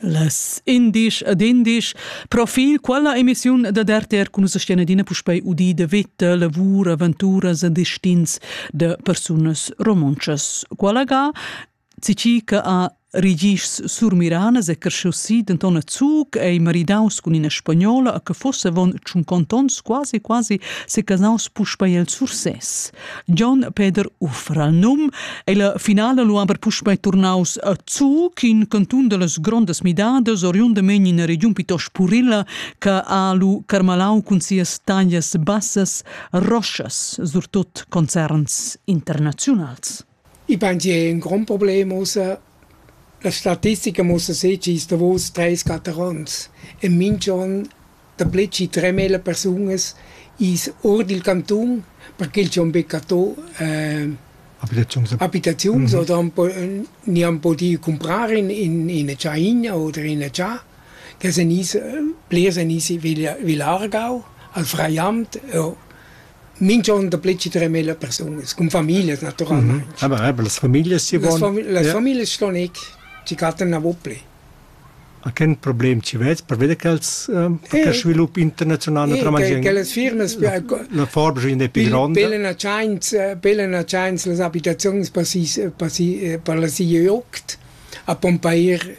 Las indisch ed indisch profil quella emissiun da DRTR cun sestian adina puspei udi de vita, lavur, aventuras e destins de persunas romontschas. Quella ga Cici che ha Rigis surmiranas e cresciusi denton a Zug ei maridaus cun ina spagnola a che fosse von tschun contons quasi quasi secasaus puspei el Sursès. John Peter Uffra num. El finala lu aber puspei turnaus a Zu, in cantun dallas grondas midadas, oriundamain in regiun piuttost purilla, che ha lu carmalau cun sias taglias bassas roschas, surtut concerns internaziunals. I pan gia ün grond problem ussa. La statistica muossa seh chi's davous treis quatter ons. E minch'on dapü chi tremila persunas i's our dil cantun perché ch'eu am beccato abitaziuns oder am po gni am pudü cumprar in üna tschaina oder üna cha che seniss, plirs senissi vi Aargau al Freiamt, jo. minch'on dapü chi tremila persunas, cun famiglias natüralmaing. Aber, aber las familias chi von... Las familias ston eir chi cattan gnanc pli. A chen problem chi vez perveda ch'els che svilup internazional naturalmain che las firmas la forbes in più gronda pelen a chance pelen a chance las abitaziuns per si per si per la si jogd a pompair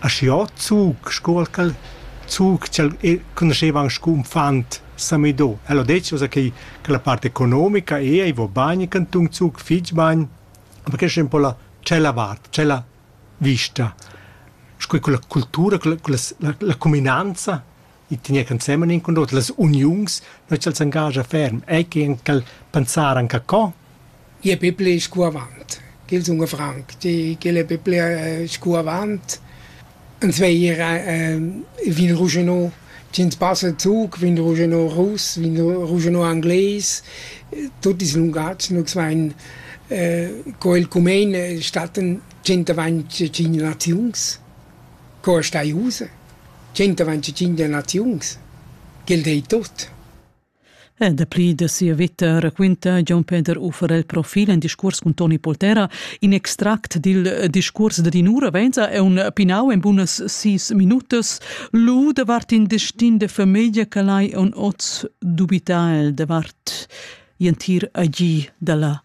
Aschi ord zug sco quel zug ch'el conoscheva aunc sco uffant Samido. El ha detg ussa che che la part economica ei, ei va bain, il cantun Zug fetg bain, aber questa è un po la tschella vart, tschella vista. Sco quella cultura, quella, quella la cuminanza i tegner ensemen in cun l'oter las uniuns, noi ch'els engagia ferm, ei che en cal pensar anca co? Je Biblia ist gut avant. Gil sun franc, die gile Biblia ist gut avant. En zweier äh, vin Rougenot, Jens passe Zug, vin Rougenot Russ, vin Rougenot Anglais, tutti i lungazzi, noi svein äh, co il cumen statten 125 naziuns. Co ei stai ussa? Tschentavan tschintg naziuns? Quel dei tut. E dapli da sia veta raquinta Gian Peter Ufer il profil en discurs cun Toni Poltera. In extract dil discurs da Dinura Venza è un pinau en bunas sis minutas lu davart in destin de famiglia che lai on oz dubita el davart entir agì dalla